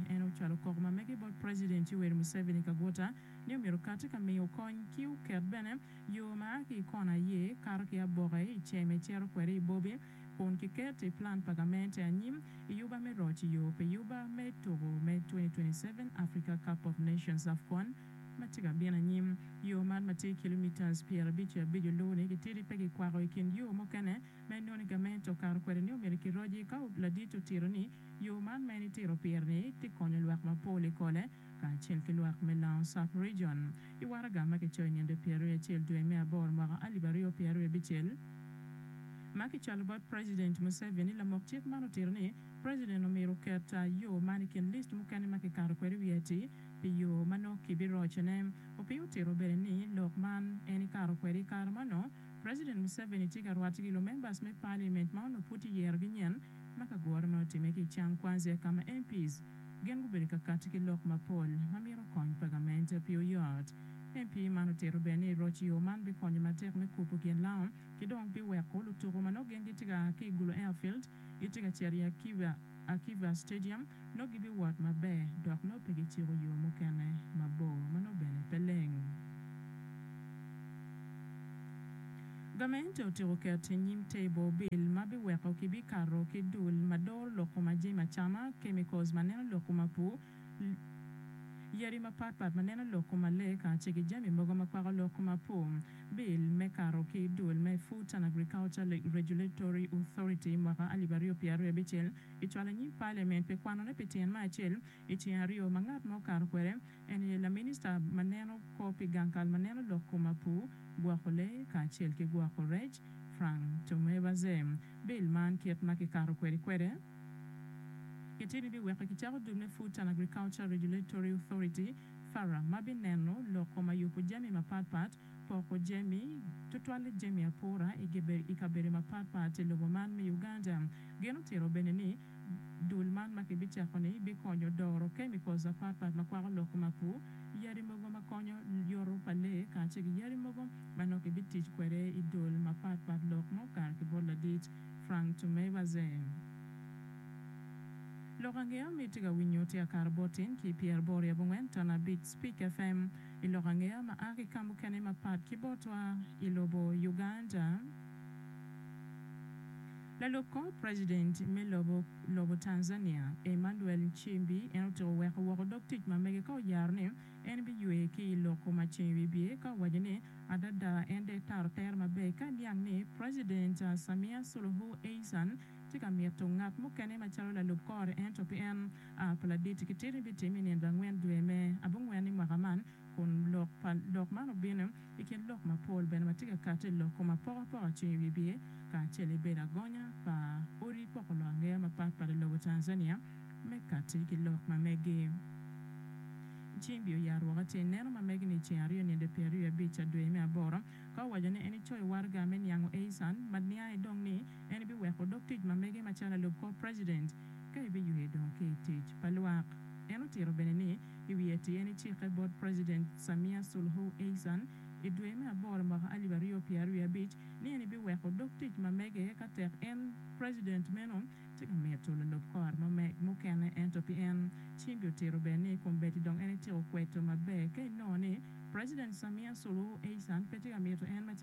En ocwalo kok ma mege bot President Yoweri Museveni Kaguta ni omyero okati ka miyo kony ki oket bene yo ma a ki i kona aye kato ki aboke i cee me cito kwede i Bobi kun kiket i plan pa gamente anyim i yuba me roc i yo pi yuba me tuku me 2027 Africa Cup of Nations, Afcon, ma tye ka bino anyim. Yo man ma tye kilometres pyerabic ki abic oluwu ni gitidi pe gikwako i kin yo mukene ma inongo ni gamente okato kwede ni omyero kiroci ka ladit otito ni Yo man ma en itito pire-ni tye konyo lwak mapol i Kole kacel ki lwak me Laong South Region. I waraga ma kicoyo i nino pyeraryo acel dwe me aboro mwaka alip aryo pyeraryo abicel ma kicwalo bot President Museveni, lamok cik man otito ni President omyero oket yo man i kin list mukene ma kikato kwede wiye atir pi yo ma nongo kibirocone. Opio otito bene ni lok man en ikato kwede i kare ma nongo President Museveni tye ka rwate ki lumembers me parliament ma onongo pud kiyerogi nyen ma ka gure ma otimme ki i Cham Kwanzia ka ma MPs gin gubedo ka kati ki lok mapol ma mito kony pa gamente pi oyot. MP man otito bene ni roc yo man bikonyo matek me kubo gin laom ki dong biweko lutuku ma nongo gin gitye ka aa ki i Gulu Airfield gitye ka cito i Akiba Akiva Stadium, nongo gibiwot maber dok nongo pe giciko yo mukene mabor ma nongo bene pe leng. Gamente otyeko keto i nyim table bil ma biweko kibikato ki dul ma doro lok kom ajami acama, chemicals ma neno lok kom apur, Yadi mapat pat ma neno lok kuma lee kace ki jami mogo ma kwako lok kuma po. Bill me kato ki dul me Food and Agriculture Regulatory Authority mwaka alip aryo pyer aryo abicel ki cwalo anyim Parliament pi kwanone pi tyen me acel i ceng aryo ma ngat mo kato kwede en aye laminista ma neno kor pi gang kal ma neno lok kuma po, gwoko lee kacel ki gwoko rec Frank Tomevaze. Bill man kit ma ki kato kwede kwede. Gitye ni biweko kicako dul me Food and Agriculture Regulatory Authority, FARA, ma bineno loko ma yubo jami mapatpat, poko jami, tutwalle jami apura i kabedo mapatpat i lobo man me Uganda. Gin otito bene ni dul man ma kibicako-ni bikonyo doro chemicals mapatpat ma kwako lok mapu, yadi mogo ma konyo yoto pa lee kacel ki yadi mogo ma nongo kibitic kwede i dul mapatpat lok mo kare ki bot ladit. Frank Tumebazen. Lok ange ami itye ka winyo tye akato bot in ki pyeraboro i abongwen ton abic Speak FM i lok ange ama a ki kamukene mapat ki botwa i lobo Uganda. Lalub kor president me lobo lobo Tanzania Emmanuel Nchimbi en otyeko weko woko dog tic ma mege ka oyaro ni En biywe ki i lok ma ceng wibye ka owaco ni, Adada en dek taro tere maber ka iniang ni President Samia Suluhu Hassan tye ka mito ngat mukene macalo lalub kore ento pe en. A pa ladit ki titi bitimme i nino pa angwen dwe me abongwen i mwaka man kun lok man obino. I kin lok mapol bene ma tye ka kati i lok kom apokapoka cung i wi biye kacel i bedo agonya pa odi poko lok angeya mapat pat i lobo Tanzania me kati ki lok ma megi. Cing biyo ya rwoka tye ineno ma megi ni i ceng aryo ninde pyeraryo abic a dwe me aboro ka owaco ni en icoyo waraga me niango Eisan Madniae dong ni en ibiweko odok tic ma megi macalo lub kor president ka ibiywe dong ki i tic pa lwak. En otito bene ni i wiye tye ni cikke bot President Samia Suluhu Hassan i dwe me aboro mwaka alip aryo pyera aryo abic ni en biweko dog tic ma mege ka tek en President meno tye ka mito lulub kor ma meg mukene ento pi en cingi otito ber ni kombeddi dong en ityeko kweto maber ka inongo ni President Samia Suluhu Hassan pe tye ka mito en